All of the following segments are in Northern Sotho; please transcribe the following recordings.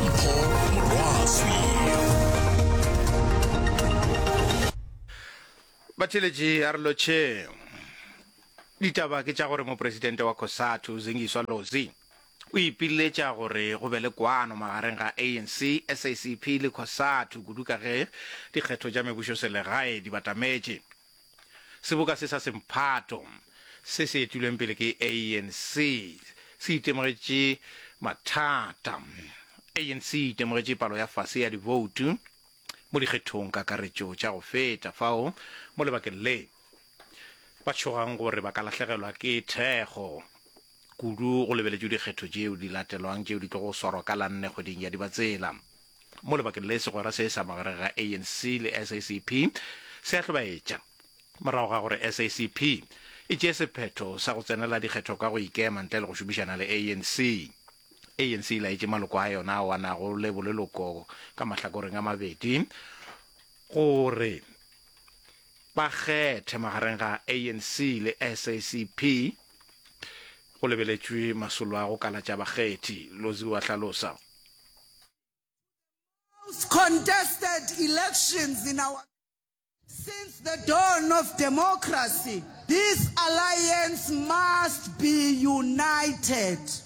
mpho morwaswi batheletši a re lotšheng ditaba ke tša gore mopresidente wa cosatu zingiswa lozi o ipiletša gore go be le kwano magareng ga anc sacp le cosatu kudu ka ge dikgetho tša mebušoselegae di batametše Seboka se sa semphato se se etilweng pele ke ANC se itemogetše mathata. ANC e itemogetše palo ya fase ya diboutu mo dikgethong kakaretšo tša go feta fao mo lebakeng le ba tšhogang gore ba ka lahlegelwa ke thekgo. Kudu go lebeletšwe dikgetho tšeo di latelwang tšeo di tlogo swarwa ka la nne kgweding ya Dibatsela. Mo lebakeng le, segwera se sa magareng ga ANC le SACP se a hlobaetša. Morago ga gore SACP e tšee sephetho sa go tsenela dikgetho ka go ikema ntle le go šomišana le ANC, ANC e laetše maloko a yona ao a nago le boleloko ka mahlakoreng a mabedi gore ba kgethe magareng ga ANC le SACP. go lebeletšwe masolo a go kalatša bakgethi, Lozi o a hlalosa. most contested elections in our since the dawn of democracy, this alliance must be united.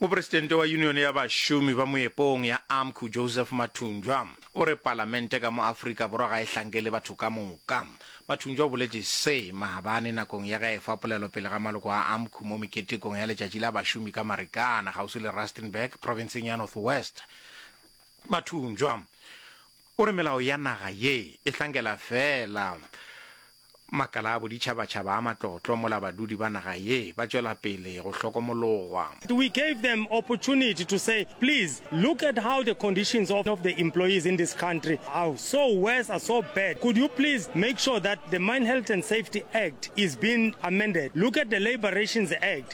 Mopresidente wa Yunione ya Bašomi ba Moepong ya AMCU, Joseph Mathunjwa, o re palamente ka mo Afrika Borwa ga e hlankele batho ka moka. Mathunjwa o boletše se maabane nakong ya ge a efa polelo pele ga maloko a AMCU mo meketekong ya Letšatši la Bašomi ka Marikana, kgauswi le Rustenburg, profenseng ya North West. Mathunjwa O re melao ya naga ye e hlankela feela makala a boditšhabatšhaba a matlotlo mola badudi ba naga ye ba tšwela pele go hlokomologwa. We gave them opportunity to say, please look at how the conditions of of the employees in this country are so worse, are so bad. Could you please make sure that the Mine Health and Safety Act is being amended? Look at the Labour Rations Act.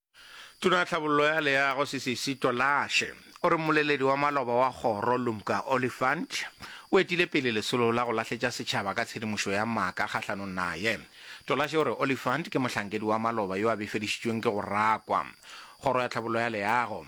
Tona Tlhabollo ya Leago Sisisi Tolashe o re mmoleledi wa maloba wa kgoro Lumka Oliphant o etile pele lesolo la go lahletša setšhaba ka tshedimošo ya maaka kgahlanong naye. Tolashe o re Oliphant ke mohlankedi wa maloba yo a befedišitšweng ke go rakwa. Kgoro ya Tlhabollo ya Leago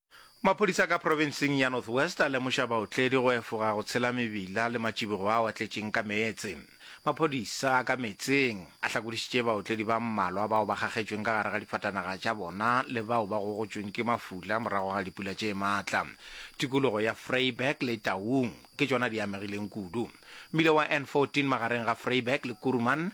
Maphodisa ka profenseng ya North West a lemoša baotledi go efoga go tshela mebila le matšibogo ao a tletšeng ka meetse. Maphodisa a ka meetseng a hlakodišitše baotledi ba mmalwa bao ba kgakgetšweng ka gare ga difatanaga tša bona le bao ba gogotšweng ke mafula morago ga dipula tše maatla. Tikologo ya Vryburg le Taung ke tšona di amegileng kudu. Mmila wa N14 magareng ga Vryburg le Kuruman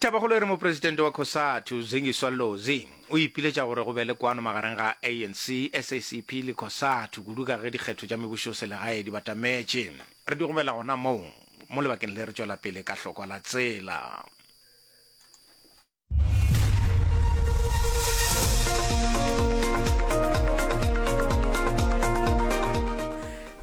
Tabakgolo e re mopresidente wa Cosatu, Zingiswa Lozi, o ipiletša gore go be le kwano magareng ga ANC, SACP le Cosatu kudu ka ge dikgetho tša mebušoselegae di batametše. Re di gobela gona moo mo lebakeng le re tšwela pele ka hlokwa la tsela.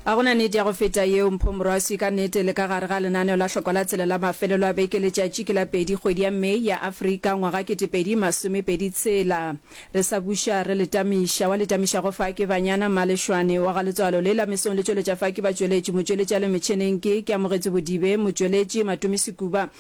ga gona nete ya go feta yeo mpho morwasi ka nete le ka gare ga lenaneo la hlokwa la tsela la mafelelo a beke letšatši ke la pedi kgwedi ya may ya afrika ngwaga ketepedi masomepedi tshela re sa buša re letamiša wa letamiša go fa ke banyana malešwane wa ga letswalo le la mesong le tšweletša fa ke batšweletši motšweletša le metšheneng ke ke amogetše bodibe motšweletši matomi sekuba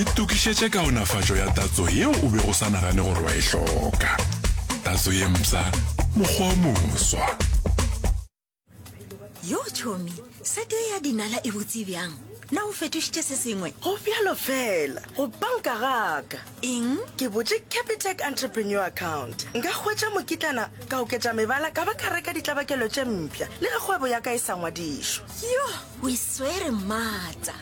Itokišetše kaonafatšo ya tatso yeo o bego o sa nagane gore wa e hloka. Tatso ye mpsha, mokgwa o moswa. Yo tšhomi, sete ye ya dinala e botse bjang? Na o fetošitše se sengwe? Go bjalo fela, go panka gaka. Eng? Ke botše Capitec Entrepreneur Account. Nka hwetša mokitlana, ka oketša mebala, ka ba ka reka ditlabakelo tše mpša, le ge kgwebo ya ka e sa ngwadišwa. Yo, o e swere maatla!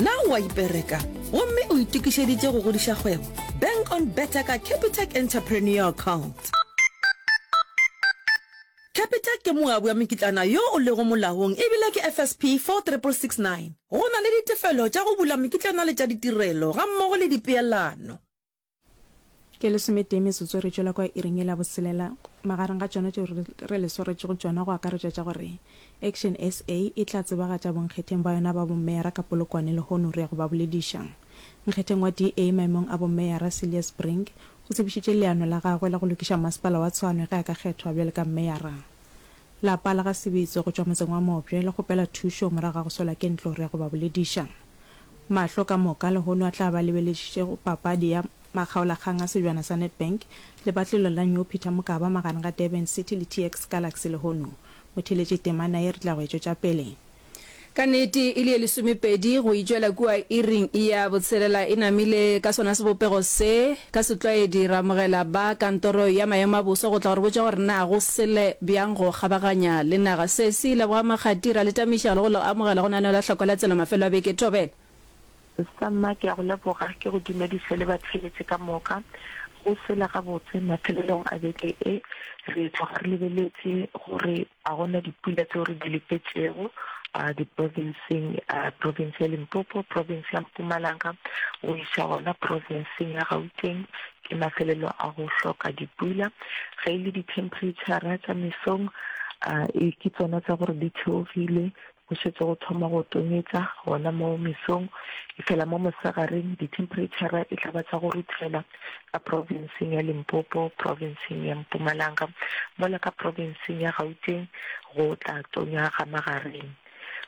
Na o a ipereka gomme o itokišeditše go godiša kgwebo? Bank on Better ka Capitec Entrepreneur Account. Capitec ke moabi wa mekitlana yo o lego molaong e bile ke FSP 46669. Go na le ditefelo tša go bula mekitlana le tša ditirelo gammogo le dipeelano. Ke lesometee metsotso re tšwela kwa iring ye la boselela. Magareng ga tšona tšeo re le swaretšego tšona go akaretšwa tša gore Action SA e tla tsebagatša bonkgetheng ba yona ba bommeyara ka Polokwane lehono re ya go ba bolediša. Nkgetheng wa DA maemong a bommeyara Cilliers Brink O tsebišitše leano la gagwe la go lokiša masepala wa Tshwane ge a ka kgethwa bjale ka meyara. Lapa la ga Sebitso go tšwa motseng wa Mopje le kgopela thušo morago ga go swelwa ke ntlo re ya go ba bolediša. Mahlo ka moka lehono a tla ba lebeledišitše go papadi ya makgaolakgang a Sejwana sa Nedbank le batlelo la New Peter Mokaba magareng ga Durban City le TX Galaxy lehono. Motheeletši Temana ye re tla go e tšwetša pele. Ka nete, e le ye lesomepedi go itšwela kua iring ya botshelela e namile ka sona sebopego se. Ka setlwaedi, re amogela ba Kantoro ya Maemo a Boso go tla go re botša gore na go sele bjang go kgabaganya le naga. Se se ile bogamakgati, ra le tamiša le go le amogela go naneelo la hlako la tsela mafelo a beke. Thobela. Samma, ke a go leboga. Ke go dumediše le batheeletše ka moka. Go sele gabotse, mafelelong a beke e, re tloga re lebeletše gore. A go na dipula tseo re di lefetšego diprofenseng, profense ya Limpopo, profense ya Mpumalanga go iša gona profenseng ya Gauteng? Ke mafelelo a go hloka dipula. Ge e le dithemphereitšhara tša mesong, ke tsona tsa gore di theogile, Go šetše go thoma go tonyetša gona moo mesong, efela mo mosegareng dithemphereitšhara e tla ba tša go ruthela ka profenseng ya Limpopo, profenseng ya Mpumalanga, mola ka profenseng ya Gauteng go tla tonya ga magareng.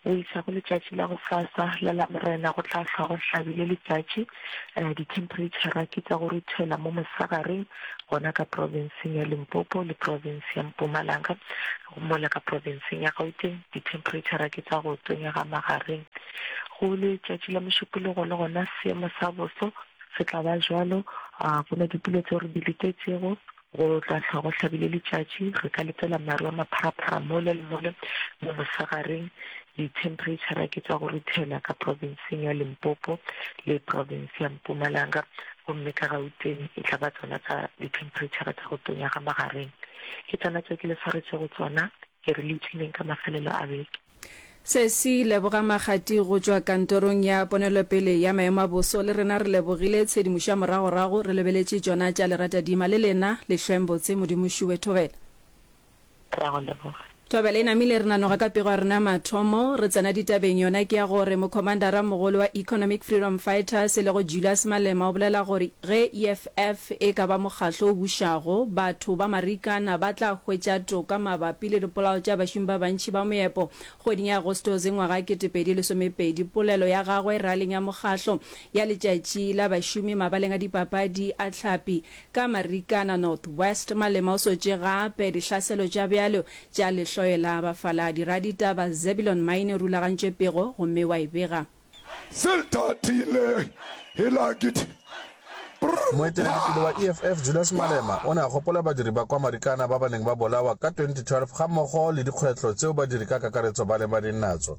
Go iša go letšatši la gosasa la Lamorena go tla hlwa go hlabile letšatši, dithemphereitšhara ke tša go ruthela mo mosegareng gona ka profenseng ya Limpopo le profense ya Mpumalanga. Go mola ka profenseng ya Gauteng, dithemphereitšhara ke tša go tonya ga magareng. Go letšatši la Mošupologo le gona seemo sa boso se tla ba bjalo, go na dipula tšeo re di letetšego, go tla hlwa go hlabile letšatši, re ka letela maru a mapharaphara mole le mole mo mosegareng. Dithemphereitšhara ke tša go ruthela ka profenseng ya Limpopo le profense ya Mpumalanga, gomme ka Gauteng e tla ba tsona tsa dithemphereitšhara tša go tonya ga magareng. Ke tsona tšeo ke le swaretšego tsona, ke re le ipshineng ka mafelelo a beke. Sesi, Leboga Makgati go tšwa kantorong ya ponelopele ya maemo a boso. Le rena re lebogile tshedimošo ya moragorago, re lebeletše tšona tša Leratadima. Le lena, Lehlweng botse, Modimo Šuwe, thobela. Ra go leboga. Thobela e namile re nanoga ka pego ya rena ya mathomo, re tsena ditabeng, yona ke ya gore Mokhomandara mogolo wa Economic Freedom Fighters e lego Julius Malema o bolela gore ge EFF e ka ba mokgahlo o bušago, batho ba Marikana ba tla hwetša toka mabapi le dipolao tša bašomi ba bantši ba moepo. Kgweding ya Agostose ngwaga wa 2012, polelo ya gagwe raleng ya mokgahlo ya letšatši la bašomi mabaleng a dipapadi a Tlhapi, Ka Marikana North West, Malema o swetše gape dihlaselo tša bjalo tša lehloyo la bafaladi. Raditaba Zebulon Maine o rulagantše pego gomme wa e bega. Se tatile Hilakit Moeteledipele wa EFF Julius Malema o ne a gopola badiri ba kwa Marikana ba ba neng ba bolawa ka 2012 gammogo le dikgwetlho tseo badiri ka kakaretso ba lebaneng natso.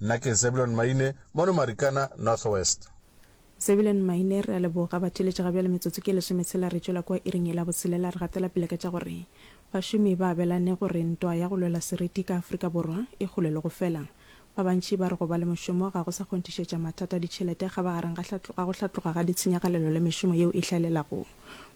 Nna ke Zebulon Maine, mono Marikana, North West. Zebulon Maine, Re a leboga, batheeletši. Ga bjale metsotso ke lesome tshela re tšwela kua iring ye la botshelela. Re gatela pele ka tša gore bašomi ba abelane gore ntwa ya go lwela seriti ka Afrika Borwa e kgolelwe go fela. Ba bantši ba re go ba le mošomo ga go sa kgonthišetša mathata a ditšhelete ga ba gareng ga go hlatloga ga ditshenyagalelo le mešomo yeo e hlaelelago.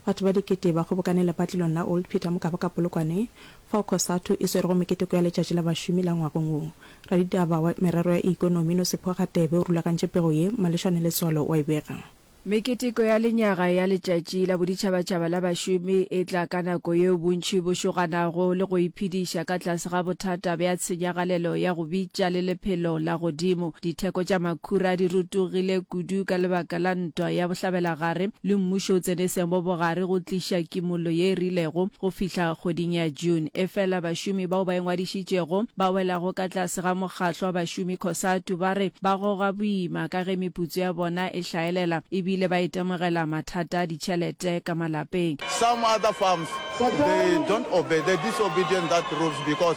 Batho ba dikete ba kgobokane lepatlelong la Old Peter mokaba ka Polokwane, fao Cosatu e swerego meketeko ya Letšatši la Bašomi la ngwagong wo. Raditaba wa merero ya ikonomi Nosipho Radebe o rulagantše pego ye, Malešane Letswalo wa e bega. Meketeko ya lenyaga ya Letšatši la Boditšhabatšhaba la Bašomi e tla ka nako yeo bontši bo šoganago le go iphediša ka tlase ga bothata bja tshenyagalelo ya go bitša le lephelo la godimo. Ditheko tša makhura di rutugile kudu ka lebaka la ntwa ya bohlabelagare, le mmušo o tsene seemo bogare go tliša kimollo ye e rilego go fihla kgweding ya June. Efela bašomi bao ba ingwadišitšego ba welago ka tlase ga mokgatlo wa bašomi Cosatu ba re ba goga boima ka ge meputso ya bona e hlaelela e bile ba itemogela mathata a ditšhelete ka malapeng. Some other farms they don't obey, they're disobedient that rules because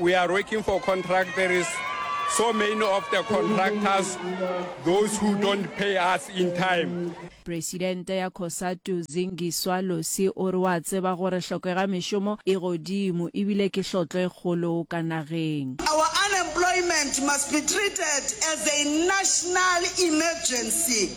We are working for contract there is so many of the contractors those who don't pay us in time. Presidente ya Cosatu Zingiswa Losi o re wa tseba gore hlokega mešomo e godimo ebile ke hlotlo e kgolo ka nageng. Our unemployment must be treated as a national emergency.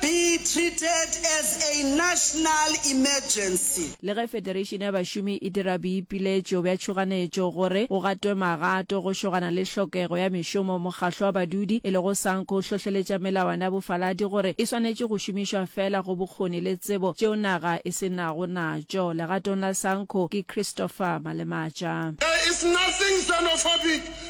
be treated as a national emergency. Le ge Federation ya Bašomi e dira boipiletšo bja tšhoganetšo gore go gatwe magato go šogana le hlokego ya mešomo, Mokgahlo wa Badudi e lego Sanco o hlohleletša melawana ya bofaladi gore e swanetše go šomišwa feela go bokgoni le tsebo tšeo naga e se nago natšo. Legatong la Sanco ke Christopher Malematša. There is nothing xenophobic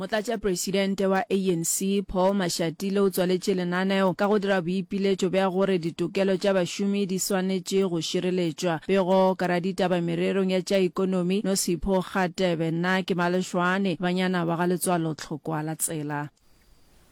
Motlatšapresidente wa ANC, Paul Mashatile o tswaletše lenaneo ka go dira boipiletšo bja gore ditokelo tša bašomi di swanetše go šireletšwa. Pego ka raditaba mererong ya tša ikonomi, Nosipho Kgatebe, Nna ke Malešwane, Banyana ba ga Letswalo Tlhokwa la Tsela.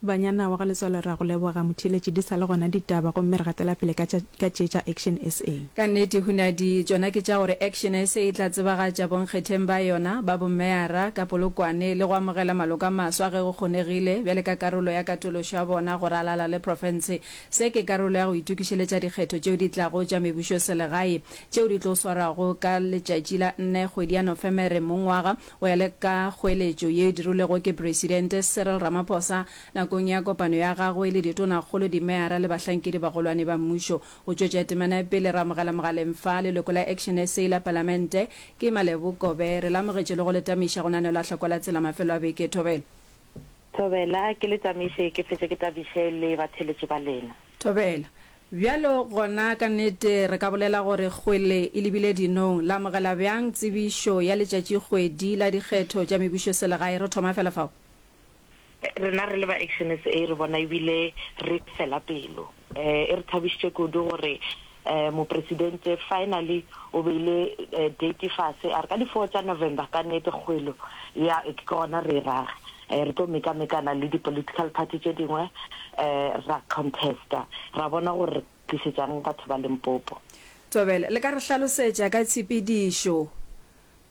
Banyana wa ga Letswalo ra go leboga Motheeletši di sa le gona ditaba gomme re gatela pele ka tša ka tše tša Action SA. Ka nnete hunadi tšona ke tša gore Action SA e tla tsebagatša bonkgetheng ba yona ba bomeyara ka polokwane le go amogela maloko a maswa ge go kgonegile bjale ka karolo ya katološo ya bona go ralala le profense. Se ke karolo ya go itokišeletša dikgetho tšeo di tlago tša mebušoselegae tšeo di tlo swarwago ka letšatši la nne kgwedi ya Nofemere mongwaga Go ya le ka kgoeletšo ye e dirilwego ke Presidente Cyril Ramaphosa nakong ya kopano ya gagwe le ditonakgolo, dimeyara le bahlankedi-bagolwane ba mmušo go tšwetša temana ya pele, re amogela mogaleng fa leloko la Action SA la Palamente, ke Malebo Kobe, re le amogetše le go le tamiša go nanelwa hlokwa la tsela mafelo a beke e thobela. Thobela, Ke le tsameiše ke fetše ke tabiše le batheeletši ba lena. Thobela, Bjalo gona ka nnete re ka bolela gore kgwele e lebile dinong. La amogela bjang tsebišo ya letšatšikgwedi la dikgetho tša mebušoselegae? Re thoma fela fao. Rena re le ba Action SA re bona ebile re fela pelo. E re thabišitše kudu gore Mopresidente finally o beile date fase, a re ka di four tša November ka nnete kgwelo ya ke gona re e rage. Re tlo mekamekana le di political party tše dingwe ra contesta ra bona gore re tlišetšang batho ba Limpopo. Thobela, le ka re hlalosetša ka tshepedišo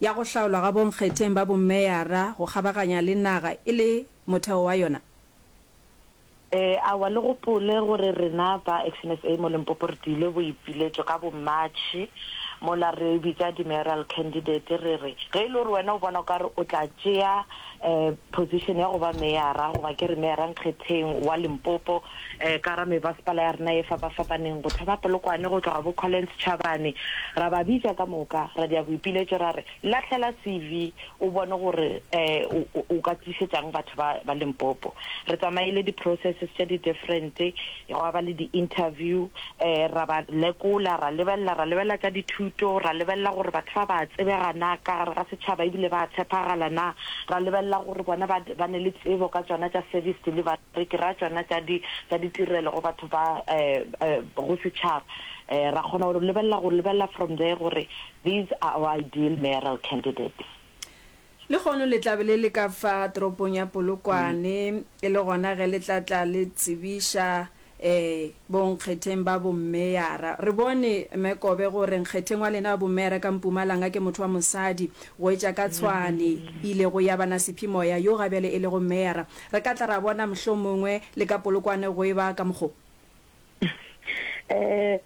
ya go hlaolwa ga bonkgetheng ba bomeyara go kgabaganya le naga e le motheo wa yona? E, aowa, le gopole gore rena ba XNSA mo Limpopo re diile boipiletšo ka bomatšhi mola re bitša di-mayoral candidate re re, ge e le gore wena o bona o ka re o tla tšea e, position ya go ba meyara goba ke re meyara nkgetheng wa Limpopo e, ka ra mebasepala ya rena e fapafapaneng, go thoma Polokwane go tloga bo Collins Chabane, ra ba bitša ka moka, ra dia boipiletšo ra re, Lahlela CV o bone gore o ka tlišetša'ng batho ba Limpopo. Re tsamaile di-processes tše di different, gwa ba le di-interview, ra ba lekola, ra lebelela, ra lebelela tša dithuto, ra lebelela gore batho ba ba a tsebega na ka gare ga setšhaba ebile ba a tshepagala na, ra lebelela gore bona ba ba ne le tsebo ka tšona tša service delivery, ke ra tšona tša di tša ditirelo go batho ba go setšhaba. Ra kgona go lebelela go lebelela from there gore These are our ideal mayoral candidates. Lehono le tla be le le ka fa toropong ya Polokwane, e le gona ge le tla tla le tsebiša um bonkgetheng ba bommeyara. Re bone, Mme Kobe, gore nkgetheng wa lena wa bommeyara ka Mpumalanga ke motho wa mosadi, go etša ka Tshwane, ile go ya bana Sephimoya, yo ga bjale e lego mmeyara. Re ka tla ra bona mohlomongwe le ka Polokwane go e ba ka mokgo. um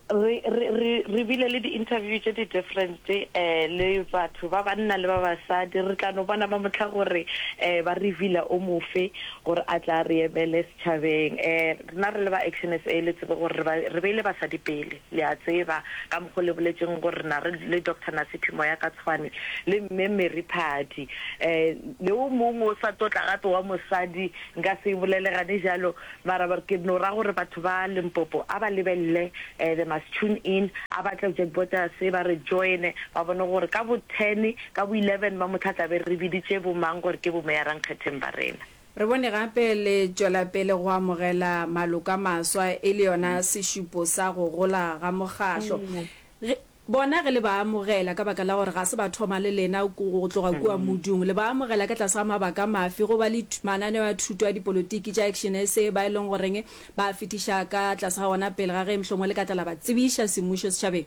re re re re bile le di-interview tše di-different um le batho ba banna le ba basadi re tla no bona ba motlha gore um ba reveala o mofe gore a tla re emele setšhabeng um rena re le ba action s a le tsebe gore re beile basadi pele le a tseba ka mokgwa le boletseng gore na re le doctor nasiphi moya ka tshwane le mme mary phadi um le o mongwe o sa totla gape wa mosadi nka se e bolelegane jalo Ba araba gore, Ke no ra gore batho ba Limpopo a ba lebelele They Must Tune In. A ba tle Jack Bottas ba re joine ba bone gore ka bo ten, ka bo eleven ba mohla tla be re biditše bo mang gore ke bomeyarankgetheng ba rena. Re bone gape le tšwela pele go amogela maloko a maswa e le yona sešupo sa go gola ga mokgahlo. Bona ge le ba amogela, ka baka la gore ga se ba thoma le lena go tloga kua modung, le ba amogela ka tlase ga mabaka mafe? Go ba le mananeo a thuto a dipolotiki tša Action SA ba e leng goreng ba a fetiša ka tlase ga wona pele ga ge mohlomongwe le ka tla la ba tsebiša semmušo setšhabeng.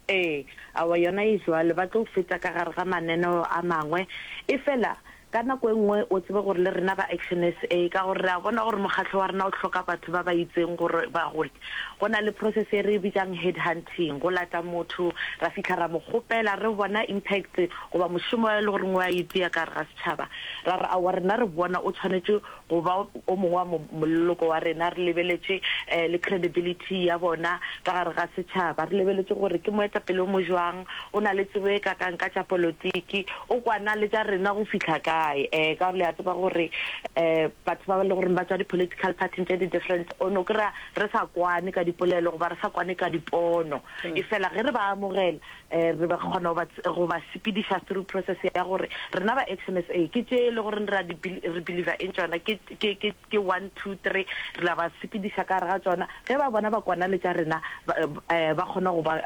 Ee, awa yona e jwalo, ba tlo feta ka gare ga mananeo a mangwe. Efela Ka nako e nngwe o tsebe gore le rena ba Action SA, ka gore re a bona gore mokgatlo wa rena o hloka batho ba ba itseng gore ba gole, go na le process e re e bitšang headhunting, go lata motho ra fihla ra mo kgopela, re bona impact goba mošomo e le goreng o a o tia ka gare ga setšhaba, ra re aowa rena re bona o tshwanetše go ba o mongwe wa moleloko wa rena, re lebeletše le credibility ya bona ka gare ga setšhaba, re lebeletše gore ke moetapele o mojwang, o na le tsebo e kakang ka tša polotiki, o kwana le tša rena go fihla kae, um ka gore le a tseba gore um batho ba e le gore ba tšwa di-political party-ing tše di different, o no kry-a re sa kwane ka dipolelo goba re sa kwane ka dipono, efela ge re ba amogela, Re be re kgona go ba sepediša through process ya gore rena ba XMSA ke tše e le gore re believer in tšona, ke one, two, three, re la ba sepediša ka gare ga tšona, ge ba bona ba kwana le tša rena ba kgona go ba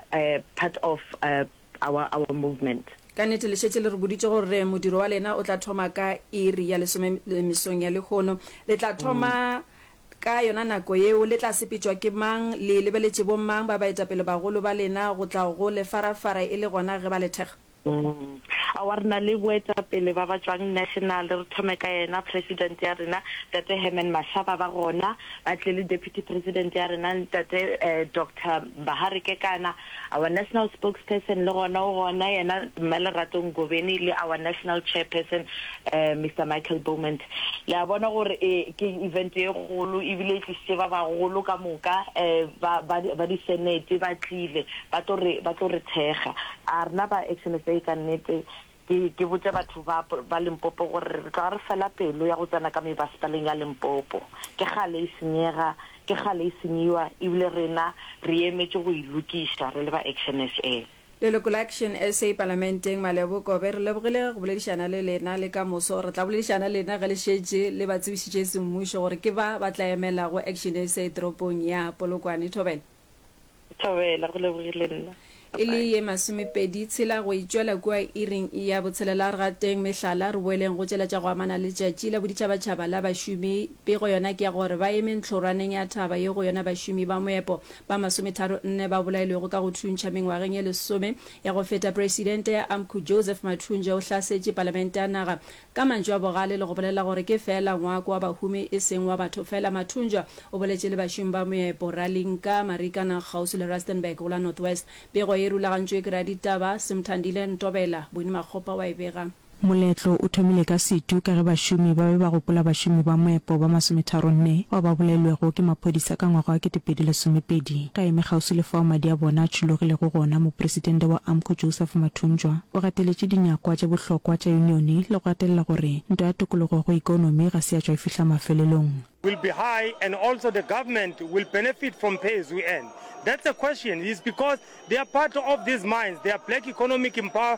part of our movement. Ka nnete le šetše le re boditše gore modiro wa lena o tla thoma ka iri ya lesome mesong ya lehono. Le tla thoma Ka yona nako yeo le tla sepetšwa ke mang? Le lebeletše bo mang ba baetapelebagolo ba lena go tla go le farafara e le gona ge ba le thekga? Aowa, re na le boetapele ba ba tšwang national. Re thome ka yena President ya rena, Tate Herman Mashaba. Ba gona, ba tle le Deputy President ya rena, Ntate Doctor Bahare Kekana. Our National Spokesperson le gona o gona, yena Mme Lerato Ngobeni le our National Chairperson Mister Michael Beaumont. Le a bona gore e ke event e kgolo ebile e tlisitše ba bagolo ka moka ba ba ba di Senate ba tlile ba tlo re ba tlo re thekga. A rena ba Action SA ka nnete Ke, ke botša batho ba, ba Limpopo gore re tloga re fela pelo ya go tsena ka mebasepaleng ya Limpopo. Ke kgale e senyega, ke kgale e senyiwa, ebile rena re emetše go e lokiša re le ba Action SA. Leloko la Action SA Palamenteng, Malebo Kobe, re lebogile ge go boledišana le lena, le ka moso re tla boledišana le lena ge le šetše le ba tsebišitše semmušo gore ke ba ba tla emelago Action SA toropong ya Polokwane. Thobela. Thobela, go lebogile nna. E le ye masomepedi tshela go e tšwela kua iring ya botshelela. Re gateng mehlala, re boeleng go tšela tša go amana le Letšatši la Boditšhabatšhaba la Bašomi. Pego yona ke ya gore ba eme ntlhorwaneng ya thaba ye go yona bašomi ba moepo ba masometharo nne ba bolailwego ka go thuntšha mengwageng ye lesome ya go feta. Presidente ya Amcu Joseph Mathunje o hlasetše Palamente ya naga Ka mantšu a bogale le go bolela gore ke feela ngwako wa bahumi e seng wa batho feela, Mathunjwa o boletše le bašomi ba moepo Ralinka, Marikana, kgauswi le Rustenburg go la North West. Pego ye e rulagantšwe ke raditaba Simthandile Ntobela, Bony Makgopa wa e bega. Moletlo o thomile ka setu ka ge bašomi ba be ba gopola bašomi ba moepo ba masometharo nne bao ba bolailwego ke maphodisa ka ngwaga wa kete pedi lesomepedi. Ka eme kgauswi le fao madi a bona a tšhologilego gona, Mopresidente wa Amco Joseph Mathunjwa o gateletše dinyakwa tše bohlokwa tša yunione le go gatelela gore ntwa ya tokologo go ikonomi ga se ya tšwa e fihla mafelelong. will be high and also the government will benefit from pay as you earn. That's a question is because they are part of these mines, they are black economic empower.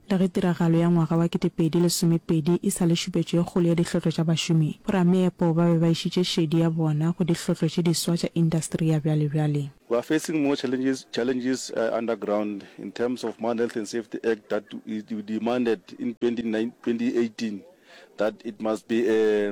Le ge tiragalo ya ngwaga wa 2012 e sa le šupetšo e kgolo ya dihlotlo tša bašomi, borameepo ba be ba išitše šedi ya bona go dihlotlo tše diswa tša indasteri ya bjalebjale. We are facing more challenges challenges underground in terms of Mine Health and Safety Act that we demanded in 2018 that it must be a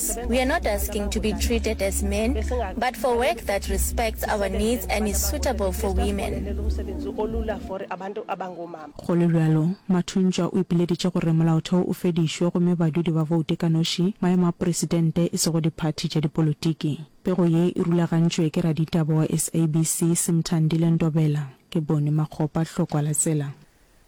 us. We are not asking to be treated as men, but for work that respects our needs and is suitable for women. Go le bjalo, Mathuntšwa o ipileditše gore molaotheo o fedišwe gomme badudi ba voute ka noši maemo a poresidente e sego diphathi tša dipolotiki. Pego ye e rulagantšwe ke raditaba wa SABC Simthandile Ndobela. Ke Boni Makgopa Hlokwa la tsela.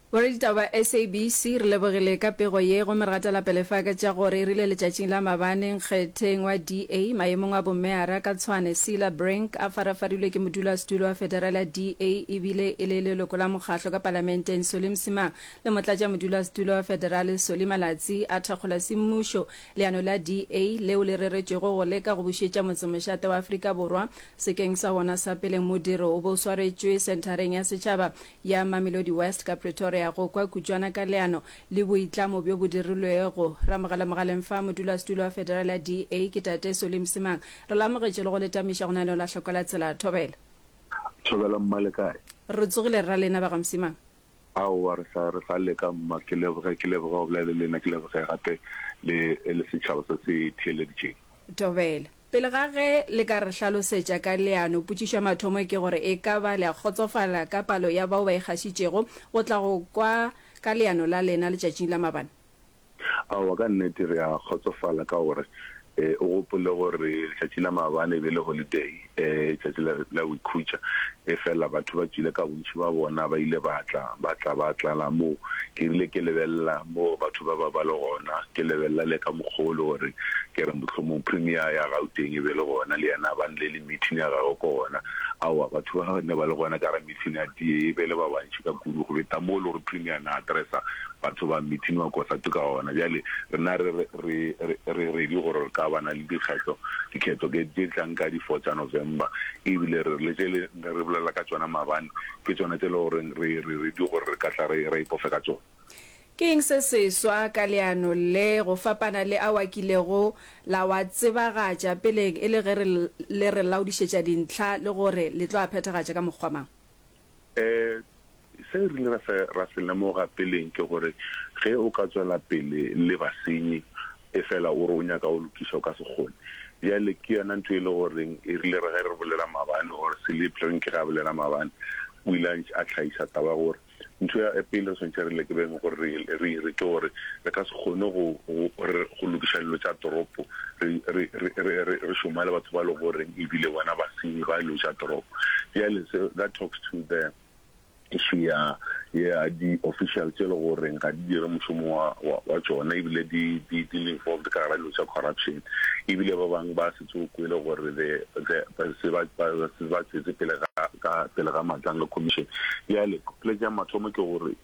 Boraditaba ba SABC re lebogile ka pego ye gomme re gatela pele fa ka tša gore e rile letšatšing la mabane nkgetheng wa DA maemong a bommeara ka Tshwane, Cilla Brink a farafarilwe ke modulasetulo wa federale ya DA e bile e le leloko la mokgatlo ka palamenteng Solly Msimang le motlatšamodulasetulo wa federale Solly Malatsi a thakgola semmušo leano la DA leo le reretšwego go leka go bušetša motsemošate wa Afrika Borwa sekeng sa wona sa pele. Modiro o be o swaretšwe senthareng ya setšhaba ya Mamelodi West ka Pretoria go kwa kutšwana ka leano le boitlamo bjo bo dirilwego. Ramogale Mogaleng fa modulasetulo wa Federal ya DA ke Tate Solly Msimang. Re lamogetše le go le tamiša go na le la hloko la tsela. Thobela. Thobela mma le kae? Re tsogile rra lena ba ga Msimang. Aowa re sa re sa leka mma ke leboge ke leboge go bolela le lena ke leboge gape le le setšhaba se se theeleditšeng. Thobela. Pele ga ge le ka re hlalosetša ka leano, potšišo ya mathomo ke gore e ka ba le a kgotsofala ka palo ya bao ba ikgašitšego go tla go kwa ka leano la lena letšatšing la mabane? Aowa, ka nnete re a kgotsofala ka gore o gopole gore letšatši la mabane e be e le holiday, tšatši la go ikhutša. Efela batho ba tswile ka bontši bja bona, ba ile ba tla, ba tla, ba tlala moo. Ke rile, Ke lebelela moo batho ba ba ba le gona, ke lebelela le ka mokgwa o le gore, ke re, mohlomong Premier ya Gauteng e be e le gona, le yena ba nle le meeting ya gagwe ko gona. Aowa, batho ba ba ne ba le gona ka ga meeting ya tee e be e le ba bantši ka kudu go feta moo e le gore Premier a ne a addressa Batho ba mithini wa Kosatu ka ona. Bjale rena re re re ready gore re ka bana le dikgetho, dikhetho ke tše tlang ka di four tša November, e bile re le tše le ne re bolela ka tšona mabane ke tšona tše le gore re re ready gore re ka tla re re ipofe ka tšona. Ke eng se seswa ka leano le go fapana le ao a kilego la wa tsebagatša peleng e le ge re le re laodišetša dintlha le gore le tlo a phethagatša ka mokgwa mang? Se re ile ra se lemoga peleng ke gore ge o ka tšwela pele le basenyi efela o re o nyaka go lokiša, o ka se kgone. Bjale ke yona ntho e le gore e rile re ge re bolela maabane or Seleep re reng ke ge a bolela maabane, o ile a tlhagiša taba ya gore ntho ya pele re swanetše re leke beng gore re e dire ke gore re ka se kgone go lokiša dilo tša toropo re, re, re, re, re, re šoma le batho ba le goreng ebile bona basenyi ba ilo ja toropo bjale so that talks to the issue ya ya di-official tse le goreng ga di dire mošomo wa, wa, wa tšona ebile di, di, di le involved ka gara dilo tša corruption ebile ba bangwe ba se tse o kwele gore the, the, ba se ba, ba, ba tsetse pele ga, ka pele ga matlang le commission bjale poletse ya mathomo ke gore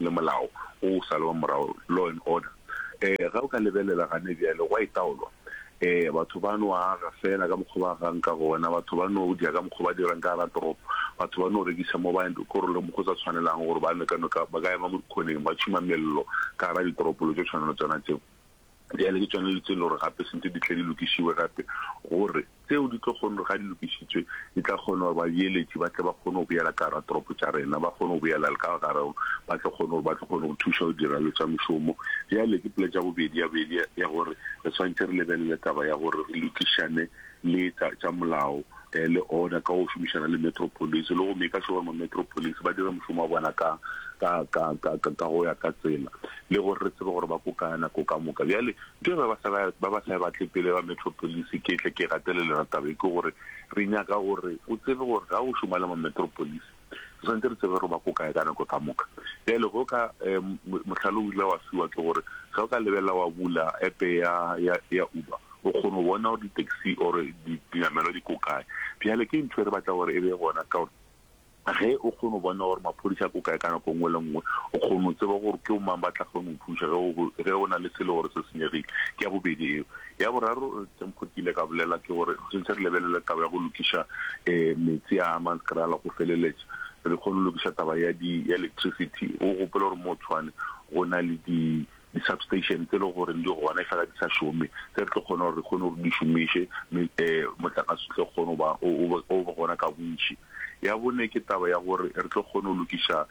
le molao wo o salwa morago, law and order. Um, ge o ka lebelela gane bjale, gwa itaolwa. Um, batho ba no aga feela ka mokgwa ba agang ka gona, batho ba no dya ka mokgwa ba dirang ka gara toropo, batho ba no rekisa mo ba korolong mo go sa tshwanelago gore ba nwe ka noka, ba ka ema mo dikgoneng ba tšhuma mello ka gara ditoropolo tšo tshwana le tsona tseo. Bjale ke tšona dilo tse e le gore gape sentse di tle di lokišiwe gape, gore tseo di tlo kgone gore ga di lokišitswe di tla kgona gore babeeletši ba tle ba kgone go boela ka gara toropo tša rena, ba kgone go boela le ka gara, ba tlo kgone gore ba tlo kgone go thuša go dira dilo tša mošomo. Bjale ke pela tša bobedi ya bobedi ya gore re swanetše re lebelele taba ya gore re lokišane le tša, tša molao eh, le order ka go šomišana le Metro Police, le go make sure gore ma-Metro Police ba dira mošomo wa bona ka, ka, ka, ka, ka, ka go ya ka tsela, le gore re tsebe gore ba ko kaya nako ka moka. Bjale ke ba ba sa ba, ba ba sa batle pele ba Metro Police, ke tle ke gatelele yona taba e, ke gore re nyaka gore o tsebe gore ga o šoma le ma-Metro Police, Re swanetše re tsebe gore ba ko kae ka nako ka moka. Bjale go ka um mohlalo o ile wa fiwa ke gore ge o ka lebelela wa bula epe ya ya ya Uber o kgone go bona gore di-taxi or dinamelwa di ko kae. Bjale ke ntho e re batla gore e be gona ka gore ge o kgone go bona gore maphodisa ko kae ka nako nngwe le nngwe o kgone go tseba gore ke o mang ba tla kgone go thuša ge o na le selo gore se senyegile ke ya bobedi eo Ya boraro tse Mokgotsi ile ka bolela ke gore re šetše re lebelele taba ya go lokiša meetse a Amanskraal go feleletša, re kgone go lokiša taba ya di ya electricity. O gopole gore moo Tshwane go na le di di substation tse le goreng di gona e fela di sa šome, tse re tlo kgona gore re kgone gore di šomiše, mme motlakase o tle o kgone go ba o be gona ka bontši. Ya bone ke taba ya gore re tlo kgone go lokiša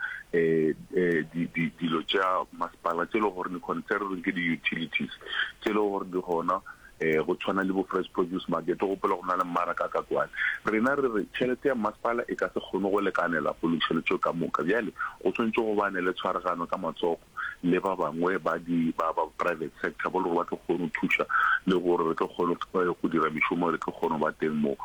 dilo tša masepala tse e le gore di concern ke di-utilities tse e le gore di gona um go tshwana le bo-fresh produce market o gopola go na le mmaraka ka kwane rena re re tšhelete ya masepala e ka se kgone go lekanela go lokiša dilo tseo ka moka bjale go tshwanetse go bane le tshwaragano ka matsogo le ba bangwe ba private sector bo le gore ba tlo kgone go thuša le gore re tlo kgone go dira mešomo re tlo kgone go ba teng moo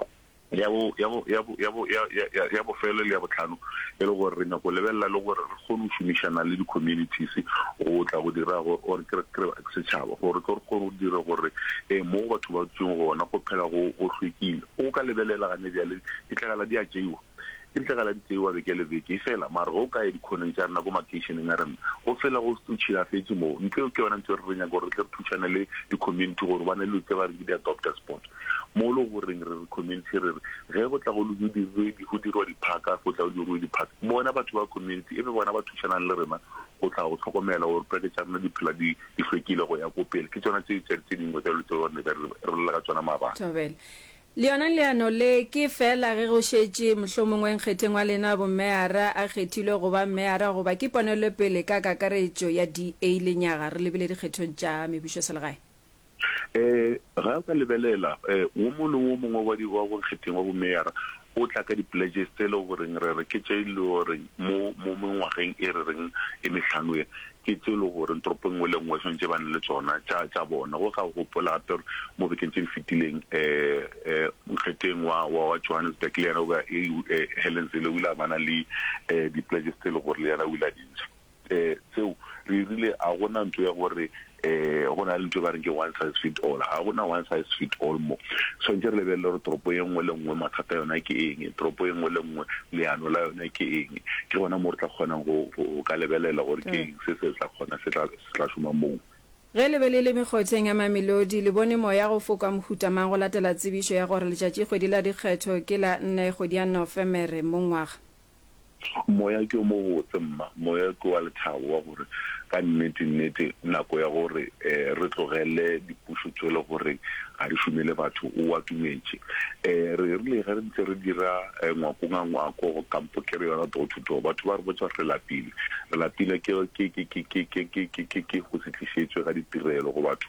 Ya bo, ya bo, ya bo, ya bo, ya, ya, ya, ya bofelo le ya botlhano e le gore re nyako lebelela le gore re kgone go šomišana le di-communities go tla go dira gore or ke re setšhaba gore tlo re kgone go dira gore um mo batho ba dutseng gona go phela go go hlwekile o ka lebelela gane bjale ditlegela di a tšeiwa ke ditlegela di tseiwa beke le beke e fela mare go ka ye dikgoneng tša rena ko makeišeneng a rena go fela go tšhilafetse moo ntle ke yona ntse re re nyaka gore re tle re thušane le di-community gore ba ne le tse ba re ke di-adopter sport Mo e lego goreng re re community re re ge go tla go diruedi go dirwa diphaka go tla go diruwe diphaka bona batho ba community e be bona ba thušanang le rena go tla go hlokomela gore poleke tša rena di phela di di hlwekile go ya ko pele ke tsona tse tse tse dingwe tsa dilo tse gore ne ka re bolela ka tsona maabane. Thobela. Le yona leano le ke feela ge go šetše mohlomongwe nkgetheng wa lena bommeara a kgethilwe go ba mmeara goba ke ponelopele ka kakaretšo ya DA lenyaga re lebile dikgethong tša mebušoselegae? Um ga o ka lebelela, um wo mongwe le wo mongwe wa di, wa bonkgetheng wa bomeyara o tla ka di-pledges tse e le goreng re re ke tše e le goreng mo, mo mengwageng e re reng e mehlano e, ke tše e le goreng toropo e nngwe le e nngwe e swanetše e bane le tsona tša, tša bona. Go ka o gopola gape gore mo bekeng tše di fetileng, um nkgetheng wa, wa, wa Johannesburg le yena o be a, Helen Zille o ile a bana le, um di-pledges tse e le gore le yena o ile a di ntsha. um seo re irile a gona ntho ya gore um go na le ntho e ba reng ke one size fit all ga gona one size fit all mo tshwanetse re lebelele gore toropo e nngwe le nngwe mathata yona ke eng toropo e nngwe le nngwe leano la yone ke eng ke gona mo re tla kgonang go ka lebelela gore ke eng se se tla kgona se tla šoma moo Ge le be le le mekgotheng ya Mamelodi, le bone moya go foka mohuta mang go latela tsebišo ya gore letšatšikgwedi la dikgetho ke la nne kgwedi ya Nofemere mongwaga? Moya ke o mobotse, mma. Moya ke wa lethabo wa gore ka nnete, nnete nako ya gore re tlogele dipušo tšwele gore ga di šome le batho o atumetše. Re rile ge re ntse re dira ngwako nga ngwako, kampo ke re yona door to door, batho ba re botša gore re lapile. Re lapile ke, ke, ke, ke, ke, ke, ke, ke, ke, ke go se tlišetšwe ga ditirelo go batho.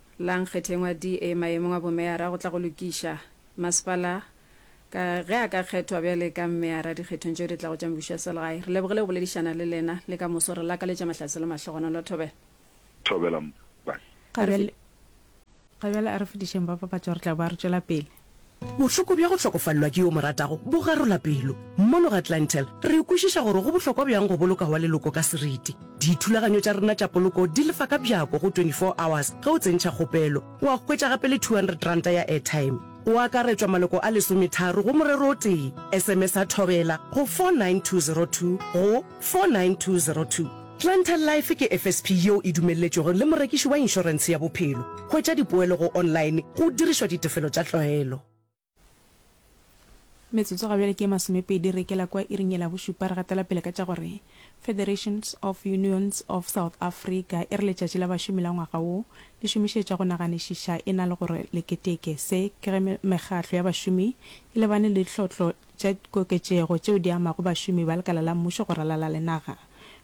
La nkgetheng wa DA maemong a bomeyara go tla go lokiša masepala ka ge a ka kgethwa bjale ka meyara dikgethong tšeo di tlago tša mebušo ya selegae. Re lebogile go boledišana le lena le ka moso. Re lakaletša mahlatse le mahlogonolo. Thobela. Thobela, Mpa. Ga bjale a re fodišeng ba papatšo, re tla boa re tšwela pele. Bohloko bja go hlokofalelwa ke yo o mo ratago bo garola pelo. Mono ga Clientele, re kwešiša gore go bohlokwa bjang go boloka wa leloko ka seriti. Dithulaganyo tša rena tša poloko di lefa ka bjako go 24 hours ge o tsentšha kgopelo. Wa hwetša gape le R200 ya airtime. Go akaretšwa maloko a lesometharo go morero o tee. SMS-a Thobela go 49202 go. 49202. Planter Life ke FSP yeo e dumelletšwego le morekiši wa inšorense ya bophelo. Hwetša dipoelo go online go dirišwa ditefelo tša tlwaelo. Metsotso ga bjale ke ye masomepedi re ikela kwa iring ye la bošupa, re gatela pele ka tša gore Federations of Unions of South Africa e re letšatši la bašomi la ngwaga wo le šomišetša go naganišiša e na le gore le keteke se ke ge mekgahlo ya bašomi e lebane le tlhotlo tša koketšego tšeo di amago bašomi ba lekala la mmušo go ralala le naga.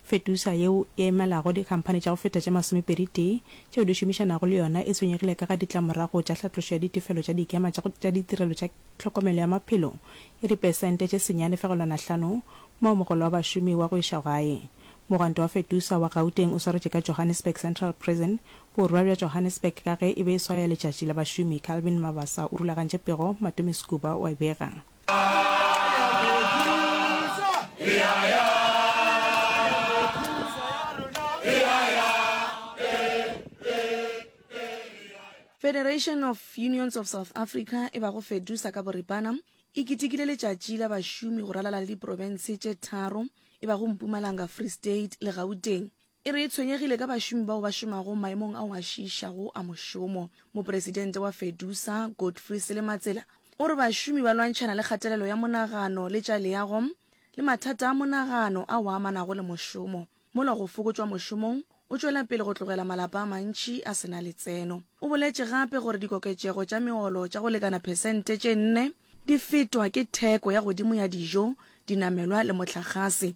Fetusa yeo e emelago dikhamphani tša go feta tše masomepedi-tee tšeo di šomišanago le yona e tshwenyegile ka ga ditlamorago tša hlatlošo ya ditefelo tša dikema tša tša ditirelo tša tlhokomelo ya maphelo ya dipesente tše senyane fegelwana hlano moo mogolo wa bašomi wa go iša gae. Mogwanto wa Fetusa wa Gauteng o swaretše ka Johannesburg Central Prison Borwa bja Johannesburg ka ge e be e swaya letšatši la bašomi. Calvin Mabasa o rulagantše pego, Matume Skuba o a e bega. Federation of Unions of South Africa e bago Fedusa ka boripana e kitikile letšatši la bašomi go ralala le diprofense tše tharo e bago Mpumalanga, Free State le Gauteng E re e tshwenyegile ka bašomi bao ba šomago maemong ao a šiišago a mošomo. Mopresidente wa Fedusa, Godfrey Selematsela, o re bašomi ba lwantšhana le kgatelelo ya monagano le tša leago le mathata a monagano ao a amanago le mošomo, mola go fokotšwa mošomong o tšwela pele go tlogela malapa a mantši a se na letseno. O boletše gape gore dikoketšego tša meolo tša go lekana phesente tše nne di fetwa ke theko ya godimo ya dijo, dinamelwa le mohlagase.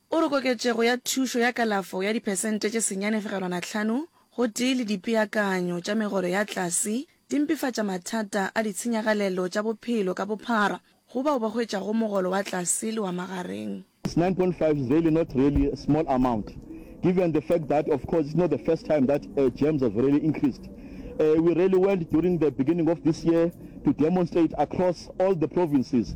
O re koketšego ya thušo ya kalafo ya diphesente tše senyane fegelwana hlano gotee le dipeakanyo tša megolo ya tlase di mpefatša mathata a ditshenyagalelo tša bophelo ka bophara go bao ba hwetšago mogolo wa tlase le wa magareng. It's nine point five is really not really a small amount given the fact that of course it's not the first time that uh, jams have really increased. Uh, we really went during the beginning of this year to demonstrate across all the provinces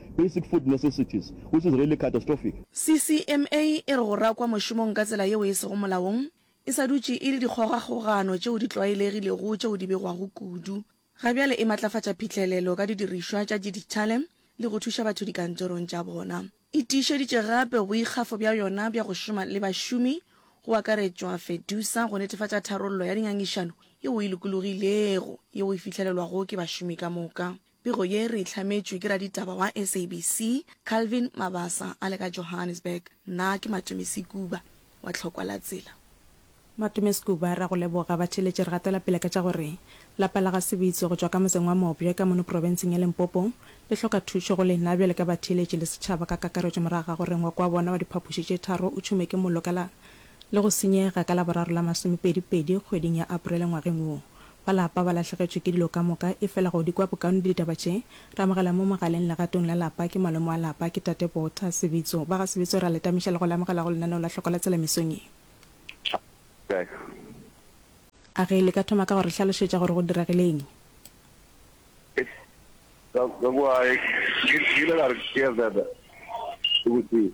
basic food necessities, which is really catastrophic. CCMA e re go rakwa mošomong ka tsela yeo e sego molaong e sa dutše e le dikgogakgogano tšeo di tlwaelegilego tšeo di begwago kudu, ga bjale e matlafatša phihlelelo ka didirišwa tša diditšhale le go thuša batho dikantorong tša bona. E tiišeditše gape boikgafo bja yona bja go šoma le bašomi, go akaretšwa Fedusa, go netefatša tharollo ya dingangišano yeo e lokologilego yeo e fihlelelwago ke bašomi ka moka. Pego ye re e hlametšwe ke raditaba wa SABC, Calvin Mabasa a le ka Johannesburg. Nna ke Matumisi Kuba wa Tlhokwa la Tsela. Matumisi Kuba, re a go leboga. Batheeletši re gatela pele ka tša gore lapa la ga Sebitso go tšwa ka motseng wa Mobjwe ka mono profenseng ya Limpopo le hloka thušo go lena bjale ka batheeletši le setšhaba ka kakaretšo morago ga gore ngwako wa bona wa diphapoši tše tharo o tšhome ke mollo ka la le go senyega ka Laboraro la masomepedi pedi kgweding ya Aprele ngwageng wo. Ba lapa ba lahlegetšwe ke dilo ka moka, efela go di kwa bokaone di ditaba tše. Re amogela mo mogaleng legatong la lapa, ke malome wa lapa, ke Tate Botha, Sebitso. Ba ga Sebitso re a le tamiša le go le amogela go lenaneo la Hloko la Tsela mesong ye. A ge le ka thoma ka go re hlalošetša gore go diragileng? Ka kwa ke ile ka re ke ya Zada, ke botsing.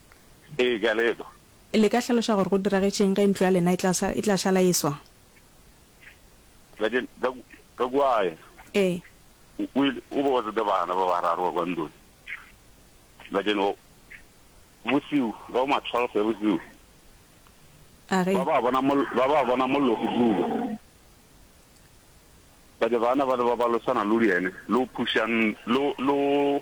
Ee, ke a le etwa. Le ka hlaloša gore go diragetše'ng ge ntlo ya lena e tla šala e swa? Kakuaye Ee. o ile o be o tsete bana ba bararo ba kwa ntlong. Bjale o, bosiu, ka bo ma twelve ya bosiu, A re. ba ba bona mollo, ba ba bona mollo o duba. Bjale bana bale ba ba losana le yene, le o phušang, le o, le o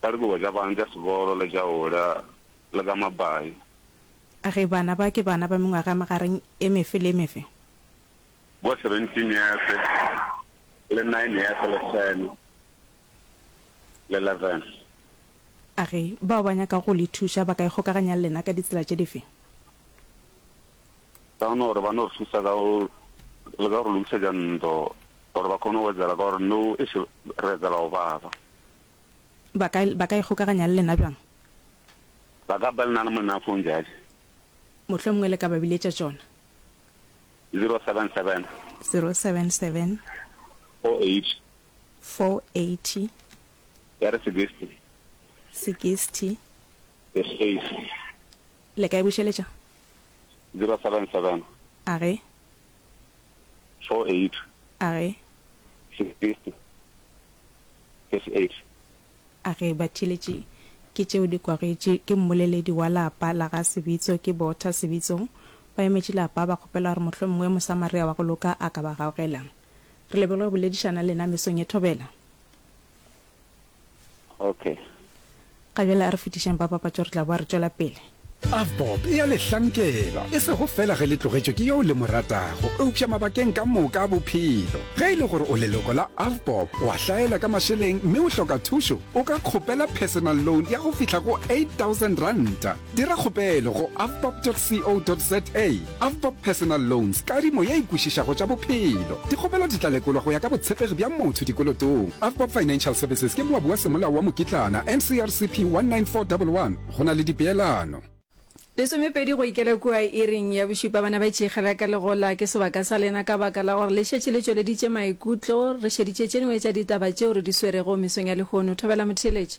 ka dikobo tša bana tša sebolo le tša ola le ka mabai. A ge bana ba ke bana ba mengwaga ya magareng e mefe le e mefe? Bo seventeen years le nine years le ten le eleven. A ge bao ba nyakago go le thuša ba ka ikgokaganya le lena ka ditsela tše dife? ka gona gore ba no re thusa ka go le ka gore lokisetša ntlo gore ba kgone go etsela ka gore no e se re etsela go baba ba ka ba ka ikgokaganya le lena bjang ba ka ba lena le monna phone jale mohlwe mongwe le ka ba biletša tšona 077 077 480 480 ya re 60 60 the space Le ka e bušeletša? Zero seven seven. A ge. Four eight. A ge. Six fifty. Six eight. A ge. Batšheletši ke tšeo di kwagetše ke mmoleledi wa lapa la ga Sebitso, ke Botha Sebitso. Ba emetše lapa ba kgopela gore mohlomongwe Mosamaria wa go loka a ka ba gaogela. Re lebogile go boledišana le lena mesong ye thobela. Okay. Ga bjale a re fetišeng ba papatšo re tla boa re tšwela pele. Avbob e a le hlankela, e sego feela ge le tlogetšwe ke yo le mo ratago, eupša mabakeng ka moka a bophelo. Ge e le gore o leloko la Avbob, o a hlaela ka mašeleng mme o hloka thušo, o ka kgopela personal loan ya go fihla go R8,000. Dira kgopelo go avbob.co.za Avbob Personal Loans, kadimo ye e kwešišago tša bophelo. Dikgopelo di tla lekolwa go ya ka botshepegi bja motho dikolotong. Avbob Financial Services ke moabi wa semolao wa mokitlana, NCRCP 19411, go na le dipeelano. Lesomepedi go ikela kua iring ya bošupa bana ba itšeikgela ka legola ke sebaka sa lena ka baka la gore le šetše le tšweleditše maikutlo. Re šeditše tše dingwe tša ditaba tšeo re di swerego mesong ya lehono. Thobela Motheeletši.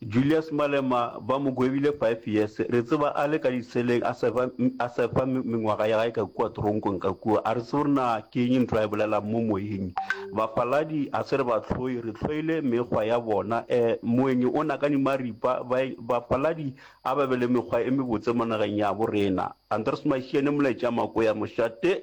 Julius Malema ba mo gwebile five years, re tseba a le ka diseleng a surfa, a surfa mengwaga ya gae ka kua toronkong ka kua, a re tsebe gore na ke eng ntho a e bolelang mo moyeng. Bafaladi a se re ba hloye, re hloile mekgwa ya bona, eh, moeng o nakane maripa, ba, bafaladi a ba be le mekgwa e mebotse mo nageng yabo rena. Andries Mashiane Moletša Makoya Mošate.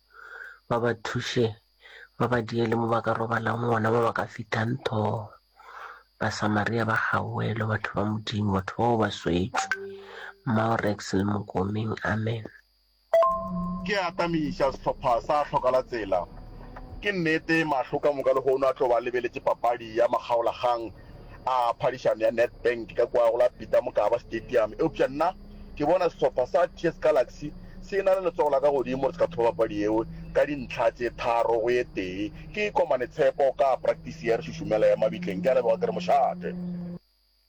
ba ba thuše ba ba diele mo ba ka robalang gona ba ba ka fitang tho basamaria ba gawelo batho ba modimo batho bao ba swetšwe maorex le mokomeng amen Ke a atamiša sehlopha sa Hlokala Tsela. Ke nnete, mahlo ka moka lehono a tlo ba a lebeletše papadi ya makgaolakgang a phadišano ya Nedbank ka kua go la Peter Mokaba Stadium, eupša nna, Ke bona sehlopha sa TS Galaxy se e-na le letsogo la ka godimo gore se ka thopa papadi yeo ka dintlha tše tharo go ye tee. Ke ikomane tshepo ka praktisi ya re šušumela ya mabitleng, ke a leboga ke re mošate.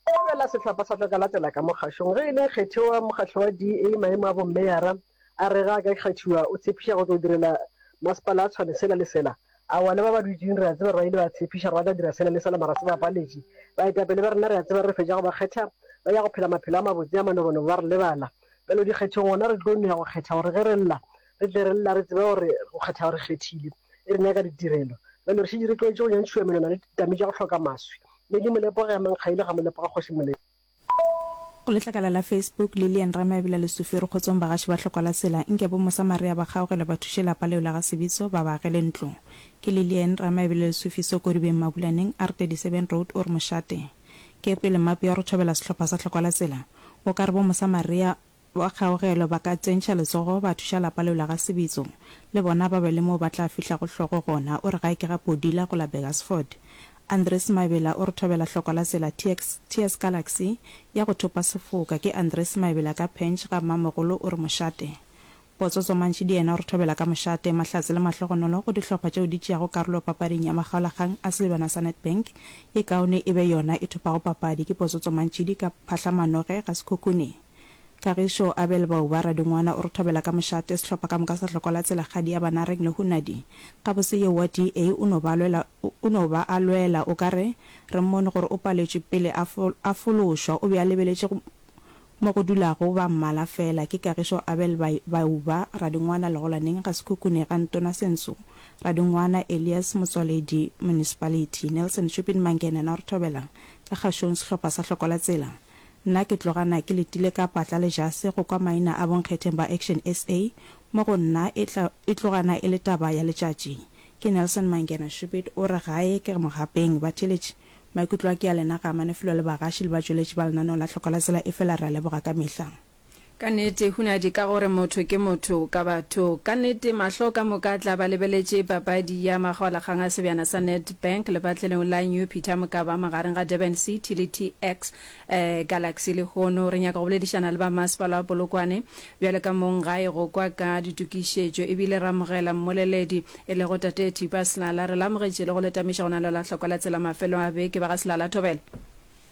Go opela sehlopha sa tla ka latela ka mo kgašong. Ge e le nkgethi wa mokgatlo wa DA maemo a bommeyara a re ge a ka kgethiwa o tshepiša go tlo direla masepala a tshwane sela le sela A bona ba ba dutšeng, re a tseba, rwa ile ba tshepiša gore ba tla dira sela le sela, mara se ba paletše. Baetapele ba rena, re a tseba, re fetša go ba kgetha, ba ya go phela maphelo a mabotse a manobonobo, ba re lebala. Bjalo dikgethong, gona re tlo no ya go kgetha gore ge re lla, re tle re lla re tseba gore go kgetha go re kgethile, e re nyaka ditirelo. Bjalo re šetše re tlogetše go nyantšhiwa menwana le ditame tša go hloka maswi. Modimo, lepoga ya Mankgaile, ga mo lepoge Kgoši Molete. Go letlakala la Facebook, Lilian Rama e bela lesufero kgotsong bagaši ba hlokwa la sela, nke bo Mosamaria ba kgaogela ba thuše lapa leo la ga Sebitso ba ba agele ntlo. Ke Lilian Rama e bela lesufi so Kodibeng Mabulaneng, R37 Road or Mošate. Ke e kwele map ya go thobela sehlopha sa hlokwa la sela. O ka re bo Mosamaria Ba kgaogelo ba ka tsentšha letsogo ba thuša lapa leo la ga Sebitso le bona ba be le moo ba tla fihlago hlogo gona, o re ga e ke ga Podila go la Burgersford. Andries Maebela o re thobela hlokwa la tsela TX, TS Galaxy, ya go thopa sefoka. Ke Andries Maebela ka Pench ga Mmamogolo o re mošate. Potsotso Mantšidi yena o re thobela ka mošate, mahlatse le mahlogonolo go dihlopha tšeo di tšeago karolo papading ya makgaolakgang a selebana sa Nedbank, ye kaone e be yona e thopago papadi. Ke Potsotso Mantšidi ka Phahlamanoge ga Sekhukhune. Kagišo Abel Bauba Radingwana o re thobela ka mošate sehlopha ka moka sa hloko la Tselagadi ya Banareng le Hunadi. Gabotse yo wa DA o no ba lwela o no ba a lwela o ka re re mmone gore o paletšwe pele a a fološwa o be a lebeletše mo go dulago ba mmala fela ke Kagišo Abel Bauba Radingwana Legolaneng ga Sekhukhune ga Ntona Sensu Radingwana Elias Motswaledi Municipality Nelson Shupin Mangenena o re thobela ka kgašong sehlopha sa hloko la tsela Nna ke tlogana ke letile ka patla le jase go kwa maina a bonkgetheng ba Action SA. Mo go nna e tla, e tlogana e le taba ya letšatši. Ke Nelson Mangena Shupit o re gae ke mogapeng, batheeletši. Maikutlo a ke a lena ga a mane felo le bagaši le batšweletši ba lenaneo la Tlhoka la Tsela efela re a leboga ka mehla. Ka nnete, hunadi ka gore motho ke motho ka batho. Ka nnete, mahlo ka moka a tla ba lebeletše papadi ya makgaolakgang a sebjana sa Nedbank lepatlelong la New Peter Mokaba magareng ga Durban City le TX Galaxy. Lehono re nyaka go boledišana le ba masepala wa Polokwane bjale ka mong gae go kwa ka ditokišetšo ebile re amogela mmoleledi e lego Tate Thipa Silala. Re le amogetše le go le tameša go na le la hlokwa la tsela mafelong a beke. Ba ga Silala, thobela.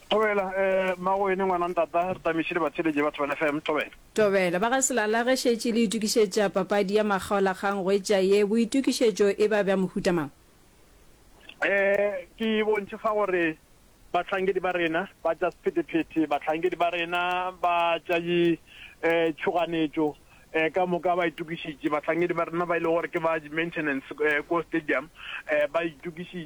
Thobela, Eh, Mmagwene, ngwana ntata, re tamišile batheeletše batho ba FM. Thobela. Thobela, Ba ga Selala ge šetše le itukišetša papadi ya makgaolakgang go etša ye, boitukišetšo e ba bja mohuta mang? Eh, ke bontši fa gore bahlankedi ba rena ba tša sephethephethe, bahlankedi ba rena ba tša di, eh, tšhoganetšo, eh, ka moka ba itukišitše. Bahlankedi ba rena ba e le gore ke ba di maintenance, eh, ko stadium, eh, ba itukišitše.